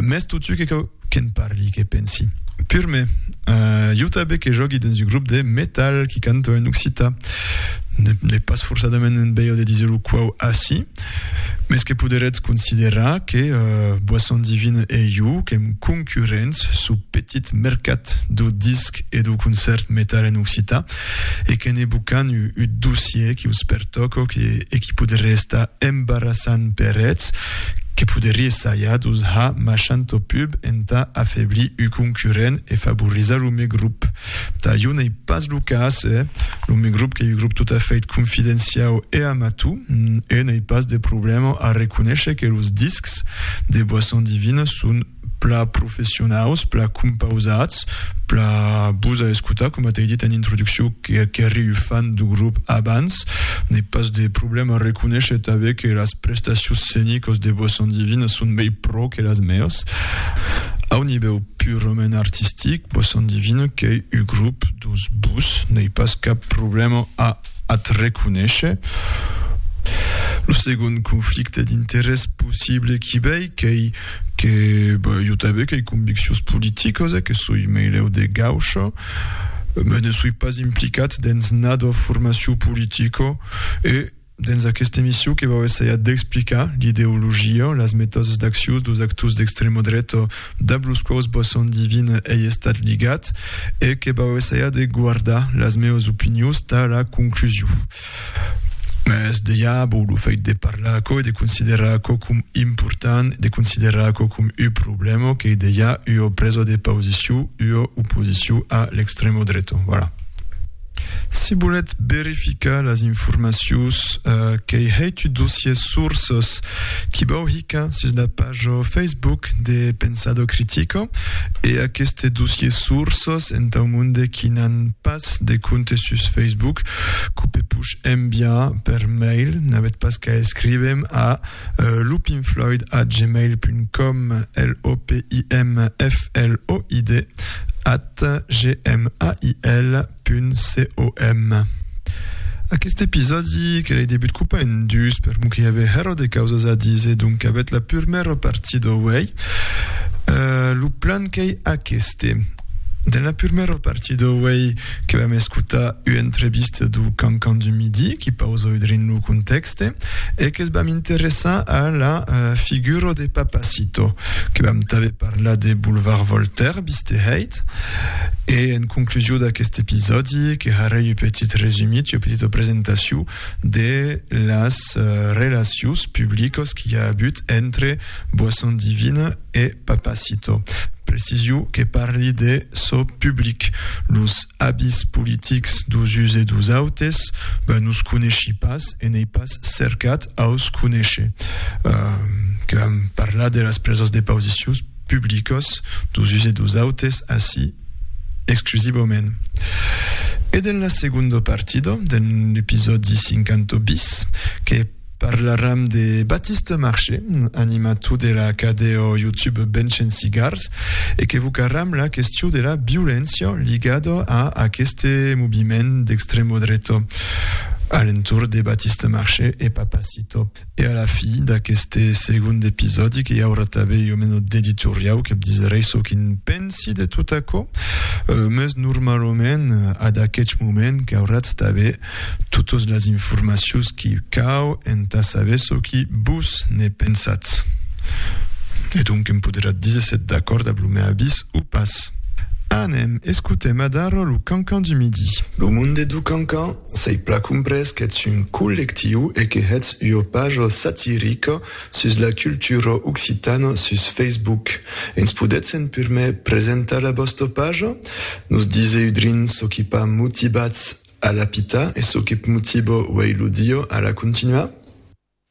Mès totu que cau que'n parli, que pensi. Pur me, ieu tanben que jògui dens un grop de metal qui canta en occita, n'ai pas forçadament un bèio de disir lo quau aci, mès que poderetz considerar que Boisson Divine e ieu que'm concurrents sul petit mercat dau disc e dau concèrt metal en occita, e que ne bocan u ut dossier qui us pertoco que e qui poderie estar embarassant per eths, que poderie saja d'us ha machant au pub entà afeblir u concurrent e favorizar lo me grup. Tà jo n'ei pas lo cas, eh? Lo me grup qu'ei u grup tot a fait confidenciau e amatu, e n'ei pas de problema a reconéisher que los discs de boisson divina son pla professionaus, pla compausats, pla bus a escotar, coma t'ai dit en introduccion, qu'eri un fan du grup abans, n'ai pas de problèma a reconéisher tanben que las prestacions scenicas de Boisson Divine son mei pro que las meas. Au nivèu purament artistic, Boisson Divine qu'ei un grup dus bus, n'ai pas cap problèma a ath reconéisher. Lo segond conflicte d'interès possible qu'i vei, qu'ei que jo tanben qu'ei conviccions politicos e que soi meilèu de gaucho, mès ne soi pas implicat dens nado formacion politico e dens aquesta emission que vau essajar d'explicar l'ideologia, las metòdes d'accions deus actors d'extrema dreta, dab los quaus bò son divin ei estat ligat, e que bau essaiar de guardar las meus opinius tà la conclusiu. Mès dejà bò lo fèit de parlar aquò e de considerar aquò com important, de considerar aquò com u problèma qu'ei dejà ua presa de pausiciu, ua oposiciu a l'extremo dreto. Voilà. Si volètz verificar las informacions qu'ei heitu dossier sources qui vau hicar sus la pajo Facebook de Pensado Critico e aqueste dossier sources entau monde qui n'an pas de compte sus Facebook quo pe puch enviar per mail n'avètz pas qu'a escrivem a lopinfloid@gmail.com l o p i n f l o i d at at gmail.com Aqueste episòdi que l'ai debut copa en dus per mon que i avè hèro de causas a dise, donc avèt la purmèra partit o uèi. Uh, lo plan qu'ei aqueste. Dens la purmèra partit o uèi que vam escotar ua entrevista do Cancan du Midi qui pausa udrin lo contèxt, Este, e que's vam interessar a la figura de Papacito, que vam tanben parlar de Boulevard Voltaire, viste hèit. E en conclusion d'aquest episòdi, que harè un petit resumit, un petita presentacion de las relacions publicas qu'i a agut entre Boisson Divine e Papacito. Precisiu que parli de çò public. Los abis politics dos uns e dos autes, ben nos coneshi pas e n'ei pas cercat aus conéisher. Que vam parlar de las presas de pausicius publicas dos uns e dos autes ací exclusivament. E dens la segonda partida, dens l'episòdi 50 bis, que Parlaram de Baptiste Marché, animator de la cadeo YouTube Benchen Cigars, e qu'evocaram la question de la violéncia ligada a aqueste moviment d'extremo dreta a l'entorn de Baptiste Marché e Papacito. E a la fi d'aqueste segond episòdi que i aurà tanben jo meno d'editoriau que disèrei çò qu'i'n pensi de tot aquò, meus normalament ad aqueth moment qu'auratz tanben Totas las informacions qui cau entà saber çò qui vos ne pensatz. E donc em poderatz díser s'ètz d'acòrd ab lo mèu avís o pas. Anem, escotèm adara lo Cancan du Midi. Lo monde du Cancan, s'ei pla comprés qu'ètz un collectiu e que hètz ua paja satirica sus la cultura occitana sus Facebook. Ens podètzen purmèr presentar la vòsta paja? Nos díser udrin çò qui pas motivatz A la pita, e çò que p'mutibo uei lo dio a la continuar?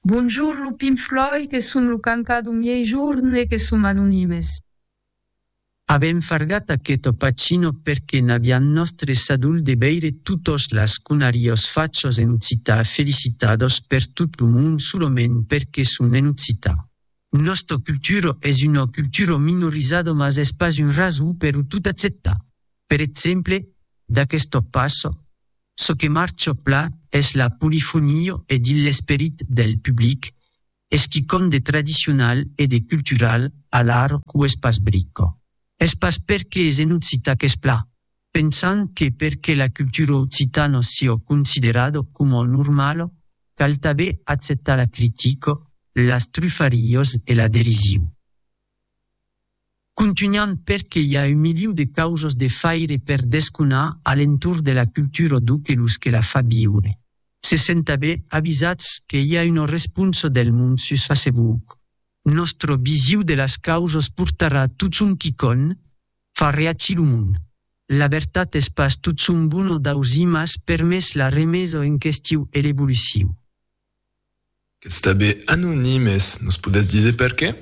Bonjour lo pin flòi que son lo cancà do miei jorn e que som anonimes. Avèm fargat aqueth opacino perque n'avián nòstre sadol de veire totos las conarios fachos en occità felicitados per tot lo mond solament perque son en occità. Nòsta cultura es una cultura minorizada mas es pas un rason per o tot acceptar. Per exemple, d'aquest top passa, çò que marcha pla es la polifonia e dins l'esperit del public es quicòm de tradicional e de cultural alara qu'o es pas brica. Es pas perque es en occitan qu'es pla, pensant que perque la cultura occitano siò considerado coma normalo cal tabé acceptar la critico, las trufarios e la derisiu. Contunhant perque i a un miliu de causos de faire per desconar a l'entorn de la cultura d'o que los que la fa viure se sentabé avisats que i a una responsa del mond sus Facebook. Nòstra visiu de las causos portarà totjorn quicònh Fa reacir lo mond. La vertat es pas tot son bon o d'auzimas permés la remesa en questiu e l'evoluciu. Qu'es tanben anonimes, nos podètz diser perqué?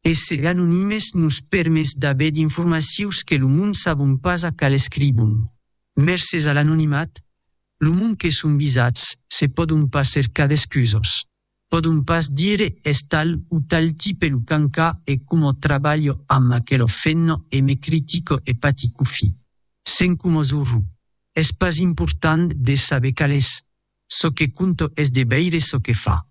Èsser anonimes nos permés d'aver d'informacius que lo mond sabon pas a cal escribon. Mercés a l'anonimat, lo mond que son visats se pòdon pas cercar d'excusas. Pòdon pas dire es tal o tal tipe lo cancà e coma trabalho amb aquelo fenno e me critico e paticufi. Sen coma zorró. Es pas important de saber cal es. Çò que conto es de veire çò que fa.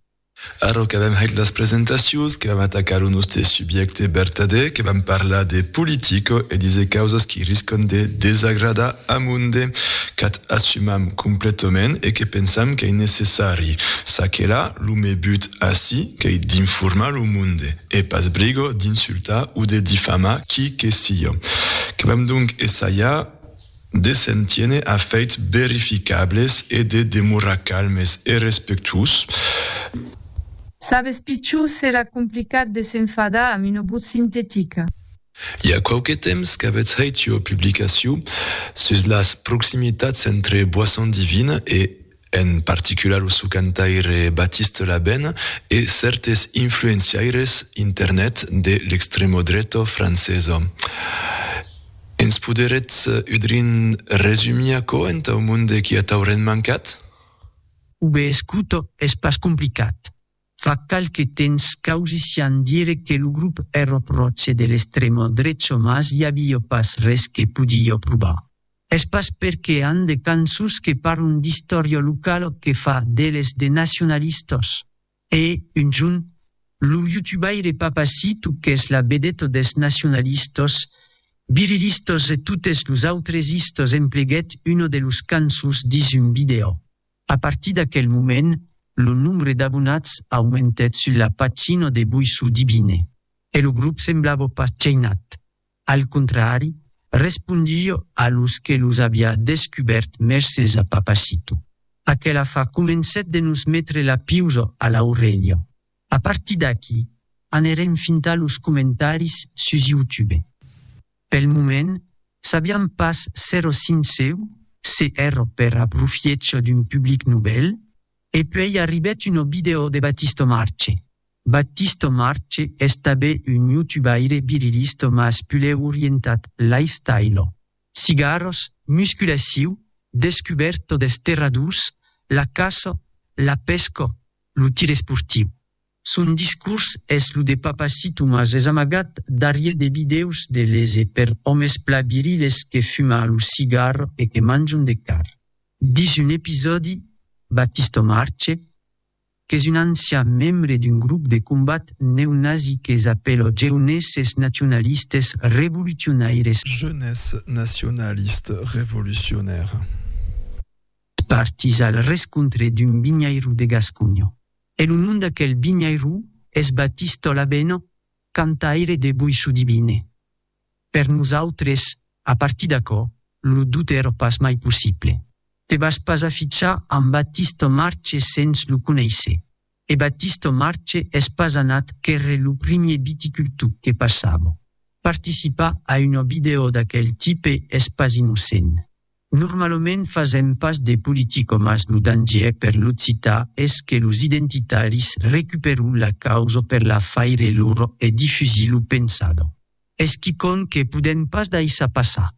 Ara qu'avèm hèt las presentacions, que vam atacar lo nòste subjècte vertadèr, que vam parlar de politica e diser causas qui riscan de desagradar amonde, cat. assumam completament e que pensam qu'ei necessari, ça que là, lo me but ací qu'ei d'informar lo monde e pas brigo d'insultar o de difamar qui que sió. Que vam donc essalhar de se'n tiene a feits verificables e de demorar calmes e respectuós. Sabes pichó, serà complicat de s'enfadar amb una botz sintetica. I a quauque temps qu'avètz hèit ua publicacion sus las proximitats entre Boisson Divine e, en particular lo sò cantaire Baptiste Labène e cèrtes influenciaires internet de l'extremodreta francesa. Ens poderetz udrin resumir aquò entau monde qui a taurent mancat? Ube escuto es pas complicat. Fa qualque temps qu'ausissián dire que lo grop èro pròche de l'extremo drecho mas i avió pas res que podió provar. Es pas perque an de cançons que parlon d'istòria localo que fa d'eles de nacionalistos. E, un jorn, lo youtubaire Papacito qu'es la vedeta des nacionalistos, virilistos e totes los autres istos empleguèt una de los cançons dins un vidèo. A partir d'aquel moment, lo nombre d'abonats aumentèt sul la pagina de Boissou Divine e lo grop semblava pas cheinat, al contrari, respondie a los que los aviá descubèrt mercés a Papacito. Aquel afar comencèt de nos metre la piusa a l'aurelha. A partir d'aqui, anerem fintar los comentaris sus YouTube. Pel moment, sabiam pas sero sinceu se ero per aprofiécho d'un public novèl, e puèi arribèt uno video de Batisto Marche. Batisto Marche es tabé un youtubaire virilisto mas pulèu orientat lifestylo, cigaros, musculaciu, descuberto des terradus, la caço, la pesco, Lo tir esportiu. Son discors es lo de Papacito mas es amagat darrier de vidèos de les e per òmes pla viriles que fuma lo cigar e que manjon de car. Dins un episòdi, Battisto Marce, qu'es un ancian membre d'un grop de combat neonazi que s'apèla Jeunesses Nationalistes Revolutionaires, Jeunesse nationaliste révolutionnaire. Partís al rescontre d'un vinhairó de Gasconha. E lo nom d'aquel vinhairó es Batís Tolabèna, cantaire de Boissodivine. Per nosautres, a partir d'aquò, lo doute èra pas mai possible. Te vas pas afichar amb Batís Tomarche sens lo conéisser. E Batista Marche es pas anat qu'ère lo primier viticultor que passava. Participar a una vidèo d'aquel tipe es pas innocent. Normalement fasèm pas de politica mas lo dangièr per l'occitan es que los identitaris recuperon la causa per la faire lora e difusir lo pensada. Es quicònh que podèm pas daissar passar.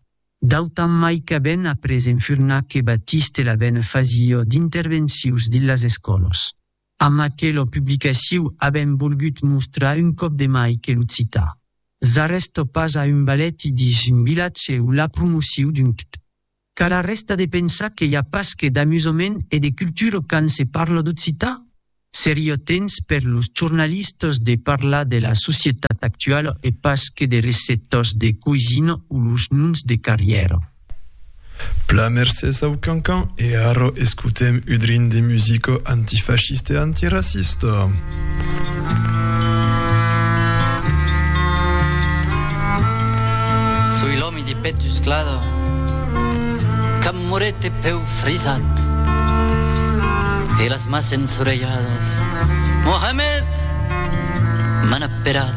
D'autant mai qu'a ben après enfurnar que Batiste la ben fasió d'intervencius dins las escòlos. Amb aquelo publicaciu a ben volgut mostrar un còp de mai que l'occitan s'arrestó pas a un baleti dins un vilatge o la promociu d'un cpt. Car arresta de pensar que i a pas que d'amusament e de cultura quand se parla d'occitan? Seria temps per los jornalistas de parlar de la societat actuala e pas que de recettas de coisina o los noms de carrièra. Pla mercés au cancan e ara escotem udrin de musica antifascista e antiracista. De petusclada, qu'am moret de peu frisat, e las mas ensorelhadas, Mohamed! m'an aperat.